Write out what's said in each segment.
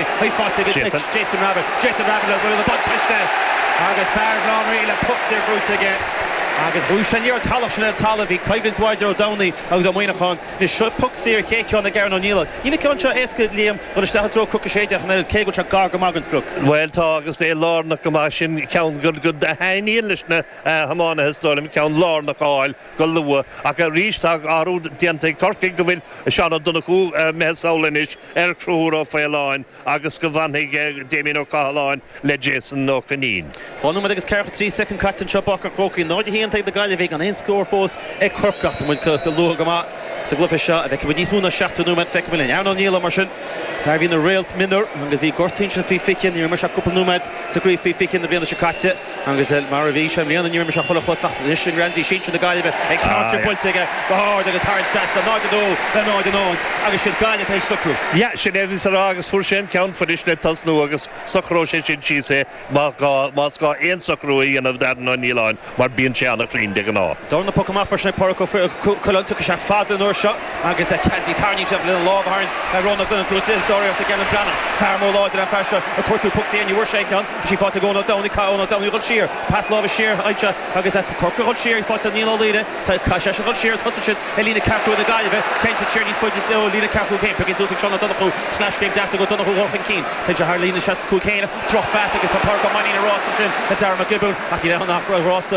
Chuir fáilte roimh Jason Rabbitte, le bua na buntáiste agus fear Bhaile Átha an Rí le poc saor buaite aige agus bhuaigh sé. Níor shalach sin ar an talamh a bhí coimhlint mhór idir Ó Domhnaigh agus Ó Muineacháin. Anois, seo poc saor chéad cheann ag Aaron Ó Nialláin. Níl an ceann seo éasca, a Liam, dhul isteach i dtreo cnoc a sé déag an oiread, cé go bhfuil sé gar go maith don sprioc. Bhuel, tá, agus é lárnach go maith sin, ceann a thaitníonn leis na hiománaithe, is dóigh liom, ceann lárnach a fháil. go luath. Ach arís, tá athrú déanta ag Corcaigh go bhfuil Seán Ó Donnchú imithe sall anois ar Chonchúr Ó Faoláin agus go bhfanfaidh Damien Ó Cathaláin le Jason Ó Coinín. Dhá nóiméad agus 43 soicind caite anseo i bPáirc an Chrócaigh, 0-1 taobh na Gaillimhe gan aon scór fós ag Corcaigh. Ach tá muid go luath go maith sa gcluiche seo. An bhfeicfidh muid níos mó ná 70 nóiméad? Feicfidh muid linn. Aaron Ó Nialláin mar sin fear a bhí ina réalt mionúr agus bhí gortaithe ansin faoi 20. Níor imir sé ach cúpla nóiméad sa gcraobh faoi 20 na bliana seo caite. Agus mar a bhí sé i mbliana, ní raibh mé seo chuile shórt faighte anois ag Ramsey. Sinsir na Gaillimhe ag cairde buailte aige go hard agus thar an trasnán, 0-2 le 0-0 agus is iad Gaillimh tar éis socrú. Yeah, sin é a bhíos a rá agus fuair sé an ceann fuirist le tosnú agus socróidh sé sin síos é má gá, más gá aon socrú a dhéanamh d'Aaron Ó Nialláin mar bíonn sé ana-chruinn de ghnáth. Deireadh na poc amach mar sin ag Pádraic Ó Coileáin, tiocfaidh sé fada an uair seo. Agus a ceansaí tarraingíonn siad lena lámh a tharraingt ar Ronald Bennett go dti dáiríreacht ag Alan Brannan. Fear mór láidir an fear seo ag cuartú poc saor ní bhfuair sé aon cheann. Is í faighte ag Eoin Ó Domhnaigh Caithfidh Eoin Ó Domhnaigh a dhul siar. Pas láimhe siar anseo agus Corcaigh a dhul siar í faighte ag Niall Ó Laoire. Caithfidh seisean a dhul siar agus thosaigh siad i líne ceathracha cúig na Gaillimhe. Téann siad siar níos faide ó líne ceathracha cúig. Pioctha suas ag Seán O'Donoghue sleaschéim deas ag O'Donoghue dhul chun cinn. Téann sé thar líne 65 chéanna. Drochphas agus tá Pádraig Ó Mainnín i rás ansin le Darragh Mac Giobúin ach ní bheidh ann ach ag rá sa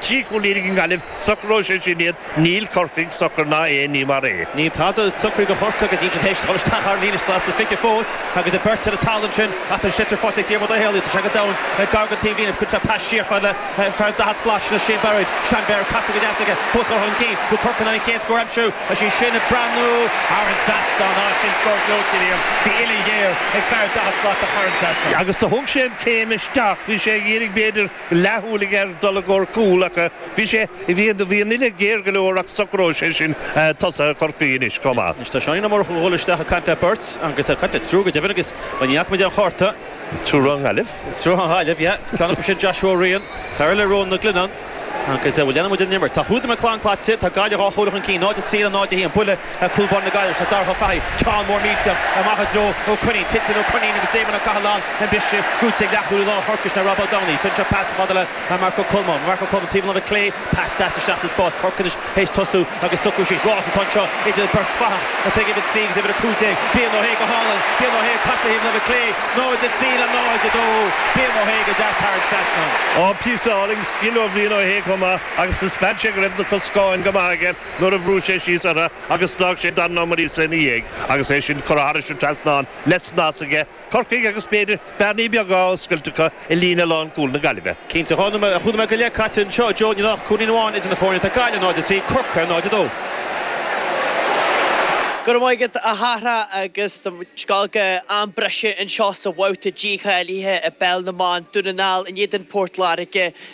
Trí chúilín ag an nGaillimh, socróidh sé sin iad. Níl Corcaigh socair ná aon ní mar é. Níl tada socair do Chorcaigh agus iad siúd théis dhul isteach thar an líne slat is fiche fós agus iad beirt ar an talamh ansin. Ach tá an sliotar faighte ag Diarmuid Ó Héalaí, tá sé go domhain ag gar don taobhlíne, cuirtear pas siar fhad le fear daichead slat sin, Shane Barrett. Shane Barrett ag casadh go deas aige, fós chun cinn an bhfuil Corcaigh in ann an chéad scór a aimsiú. Is é sin ag breathnú thar an trasnán, á, sin scór gleoite, Liam, bhí uillinn ghéar ag fear daichead slat do Chorcaigh ansin. Agus do thug sé an céim isteach, bhí sé ag iarraidh b'fhéidir, leathshúil aige ar dul i gcomhair cúl ach bhí sé, bhí, bhí an uille géar go leor ach socróidh sé sin tosaithe Chorcaí anois chomh maith. Anois tá Seánín Ó Murchú ag dhul isteach ag caint le beirt agus ag caint le triúr go deimhin agus bhuel ní fhaca muid aon chárta. Triúr ón nGaillimh? Triúr ón nGaillimh, yeah, ceann acu sin Joshua Ó Riain, fear eile Rónán Mac Glinneáin agus bhuel leanann muid an imirt. Tá Hughden Mac Conghail caite, tá Gaillimh dhá chúilín chun cinn, 0-3 le 0-1, buille Cúl báire na Gaillimhe, Darragh Ó Fathaigh, ceann mór millteach amach i dtreo Ó Coinín. Titeann Ó Coinín agus Damien Ó Cathalláin ar an bpiste. Buaite ag leathchúlaí láir Chorcaí sin é Rob Ó Domhnaigh. Tugann sé pas fhad le Marc Ó Colmáin. Marc Ó Colmáin taobh an láimhe clé. Pas deas isteach sa spás. Corcaigh anois théis tosú agus socrú síos. Rás atá anseo idir beirt fathach atá ag uimhir 3 agus uimhir 15. Brian Ó hAodha go hálainn. Brian Ó hAodha caite thaobh an láimhe clé. 0-3 le 0-2. Brian Ó hAodha go deas thar an trasnán. Píosa álainn scil ó Bhrian Ó hAodha chomh maith agus thaispeáin sé go raibh na coscáin go maith aige. nuair a bhris sé síos orthu agus d'fhág sé Darren Morrissey ina dhiaidh agus é sin curtha thairis an trasnán le snas aige, Corcaigh agus b'fhéidir bearnaí beaga á oscailt acu i líne lánchúil na Gaillimhe. Cinnte, cúig nóiméad go leith caite anseo, a Joe, níl ach cúilín amháin idir na foirne, tá Gaillimh 0-3, Corcaigh 0-2. Go raibh maith agat, a Shahra, agus tá muid gaibhte am breise anseo sa bhabhta dícháilithe i bpeil na mban, Dún na nGall in éadan Port Láirge.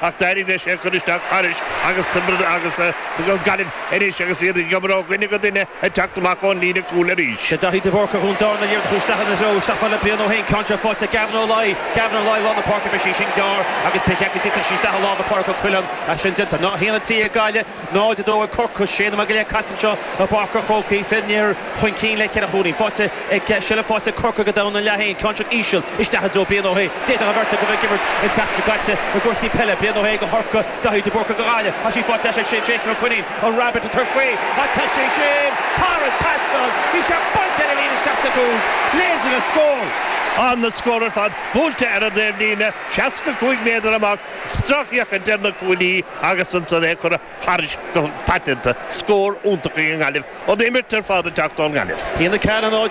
Ach d'éirigh leis é a chur isteach thairis agus tá sí ag Gaillimh anois agus iad ag oibriú ó dhuine go duine ag teacht amach ón líne chúil arís. Sé Daithí de Búrca Dhún Deárna a ligeann chúis leathan a threo. Seacht mile Brian Ó hAodha ceann seo faighte ag Gavin Ó Laoi. Gavin Ó Laoi lár na páirce bhí sí sin gearr agus pé cheann go dtiteann sí isteach i lár na páirce go Killeen. Sin déanta. Ná hiain an tí ag gaile. 0, 2 ag Corcaigh, sé nóiméad go leith caite anseo i bPáirc an Chrócaigh. Fir an Iarthair chun cinn le ceithre chúilín. Tá seilbh faighte ag Corcaigh go domhain ina leath féin, ceann seo íseal isteach i dtreo Brian Ó hAodha. D'fhéadfadh an bheirt acu a bheith ag imirt an tseachtain seo caite i gcúrsaí peile. Brian Ó hAodha do Chorcaigh, Daithí de Búrca do Ghaillimh. Tá sí faighte anois ag Jason Ó Coinín, an Rabbitte, a chuir faoi ach tá sé sin thar an trasnán. Bhí sé buailte ar an líne 65, leis an scór. Tá na scóir ar fad buailte ar an dtaobhlíne, 65 méadar amach. Isteach chuig Tiernan Killeen agus ansan é curtha thairis go paiteanta, scór iontach ag an nGaillimh, an imirt ar fad ag teacht ón nGaillimh. Bhí na cailíní áit